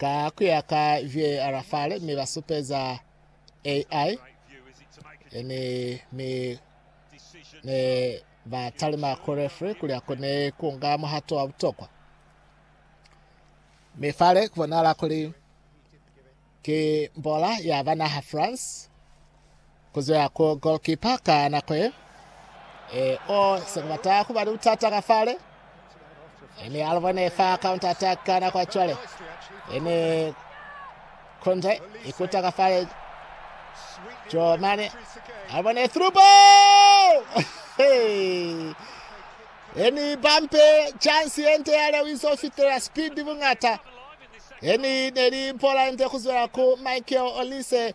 Ka kuya ka VAR fale mi ba supeza AI ene mi ne ba talima ku referee kuli akone kunga muhato wa butokwa. Mi fale kubonahala kuli ki mbola ya banaha France. Kuzwa ku goalkeeper ka nako ye. Eh oh, se kubata kuba ni butata ka fale. Ene a lubone fa counter attack ka nako ya cwale. Ene Kunde ikuta ka fale. Joe Mane a lubone through ball. Hey! Eni bampe chance yente ya Lewiso fitela speed bungata. Eni neli mpola yente kuzwela ku Michael Olise.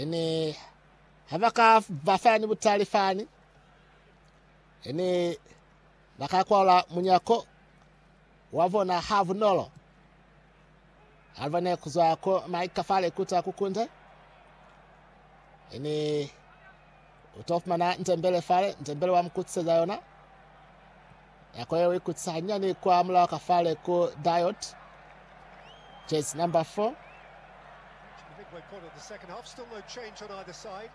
Ene ha ba ka ba fa ni butali fani, ene ba ka kwalula munyako wa bona ha bunolo. Alva ne ku zwa ku maika fa lekuta ku kunde, ene Uto fumana ntembele fale, ntembele wa mukutiseza yona. Nako yeo ikutisa hanyani kwa mulaho ka fale ku Diot. Jersey number 4. midway point of the second half. Still no change on either side.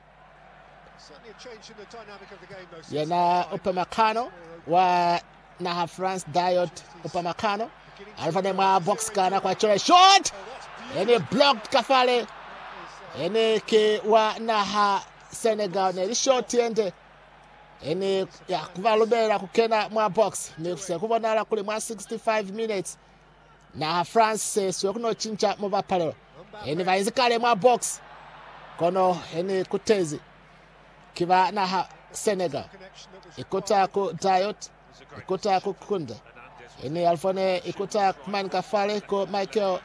Certainly a change in the dynamic of the game, though. Yena upamakano wa naha France Diot upamakano alifane mwa box kana kwa chola shot ene blocked kafale ene ke wa naha Senegal ne li short yende e ne ya ku ba lubela ku kena mwa box, mi ku se ku bonala kuli mwa 65 minutes naha France se siwe ku no cinca mubapalelo. E ne ba inzi kale mwa box, kono e ne kutezi ki ba naha Senegal ikota ku Dayot. I kuta ku kunde. I ni Alfa ne i kuta mani ka fale ku Michael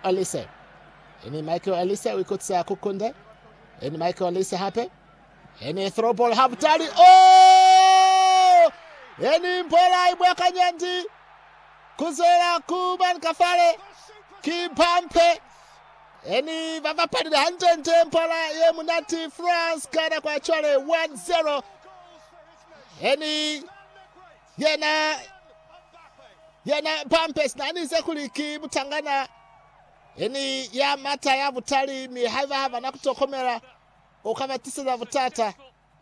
Elise. I ni Michael Elise u ikutisa ku kunde. I ni Michael Elise hape. I ni throw ball ha butali. Oh! I ni mbola i mwa kanyandi. Kuzela ku mani ka fale. Ki bampe. I ni ba bapalile hande nde mbola ye munati France kana kwa chwale 1-0. Eni yena yena Pampers na ni ze kuli ki mutangana eni ya mata ya butali mi haiba ha bana kutokomela o ka batiseza butata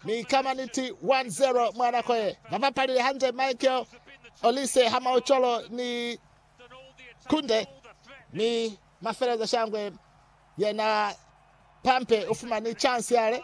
mi kama niti 1-0 mwa nako ye bapapalile hande Michael Olise ha Maucholo ni Kunde mi mafeleza shangwe yena Pampe ufumani chance yale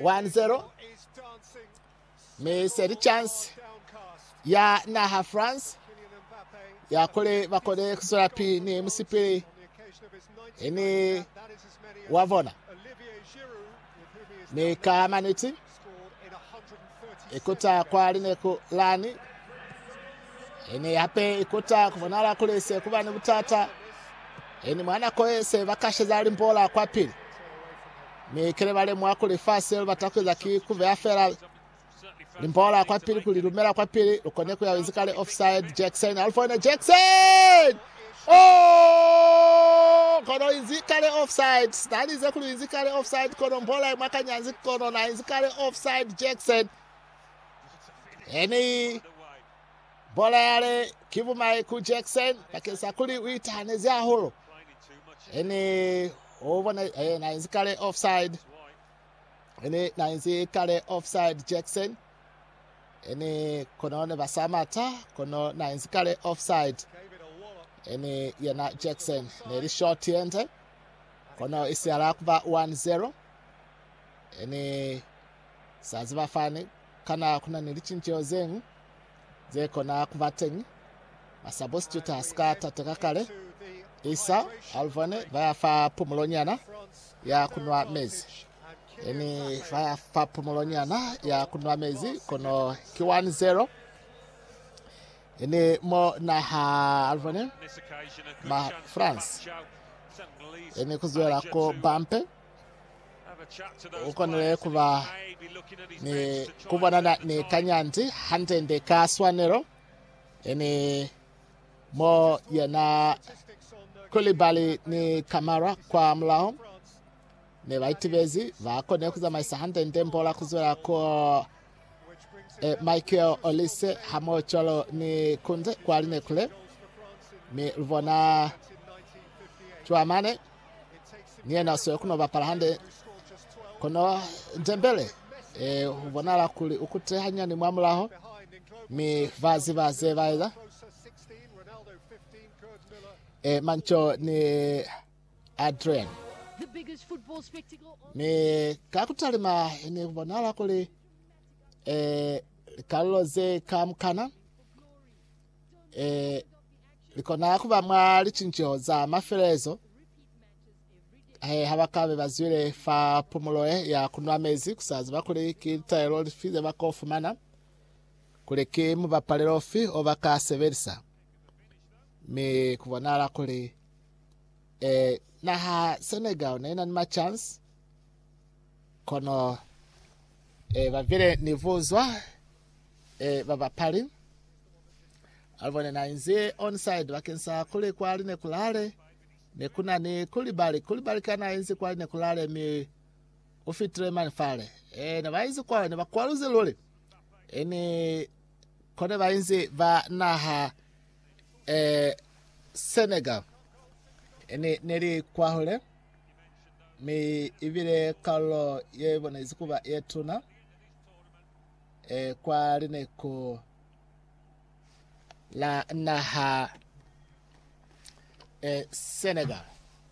1-0 mi se li chance ya naha France ya kuli ba kone kuzwela pili ni musipili ni wa bona mi ka maniti Ikuta kwa lineku lani. Ini hape ikuta kubonala kuli se kuba ni butata. Ini mwa nako ye se ba kasheza limbola kwa pili. Mi kile ba lemuha kuli fa se lu bata kueza ki kubeha fela limbola kwa pili kuli lumela kwa pili lukone kuya wezi kale offside Jackson Alphone Jackson Oh, kono inzi kale offside. Sinalize kuli inzi kale offside, kono mbola imwa kanyanzi, kono na inzi kale offside, Jackson. Eni bola yale ki bumai ku Jackson bakeng sa kuli u itahanezi hahulu. Eni o bona eh, na inzi kale offside. Ene na inzi kale offside Jackson. Ene kono ne ba sa mata kono na inzi kale offside. Ene yena Jackson ne li short yende. Kono isiala kuba 1-0. Ene sa ziba fani kana kuna ni licinceho zeng. ze kona ku ba teñi, ba substituta sika tate ka kale, Isa, Alvone, ba ya fa pumulo nyana ya ku nwa mezi. Eni ba ya fa pumulo nyana ya ku nwa mezi, kono ki 1-0. Eni mo naha Alvone, ma France, eni ku zwela ko bampe. U konile ku ba ni ku bonana ni kanyanzi hande-nde ka swanelo, yani mo yena Koulibaly ni Kamara kwa mulaho ne ba itibezi, ba konile ku zamaisa hande-nde mbola ku zwela ku E, Michael Olise hamoho cwalo ni Kunze kwa Linekule, mi lubona Tšuamane ni yena usiwe kuno bapala hande, kono Ndembele e, ubonala kuli ukute hanyani mwa mulaho, mi baziba ze baeza e, Manco ni Adrian. Mi ka ku talima ne ku bonahala kuli eh, likalulo ze kamukana eh, likona ku ba mwa licinceho za mafelelezo he eh, ha ba ka be ba zwile fa pumulo eh, ya ku nwa mezi ku sa ziba kuli ki litaelo lifi ze ba ko fumana kuli ki mubapalelo ufi o ba ka sebelisa mi ku bonahala kuli Eh, naha Senegal ne na ni ma chance kono eh bavile ni vuzwa eh ba bapali alibone na inzi onside bakeng sa kuli kwa line kulale ne kuna ni kulibali kulibali kana inzi kwa line kulale mi o fitile mani fale eh ne ba inzi kwa ne ba kwaluze lule ene kone ba inzi ba naha eh, Senegal eh, ne, ne li kwahule, mi ibile kalulo ye ibonezi kuba ye tuna eh, kwa lineko la naha eh, Senegal.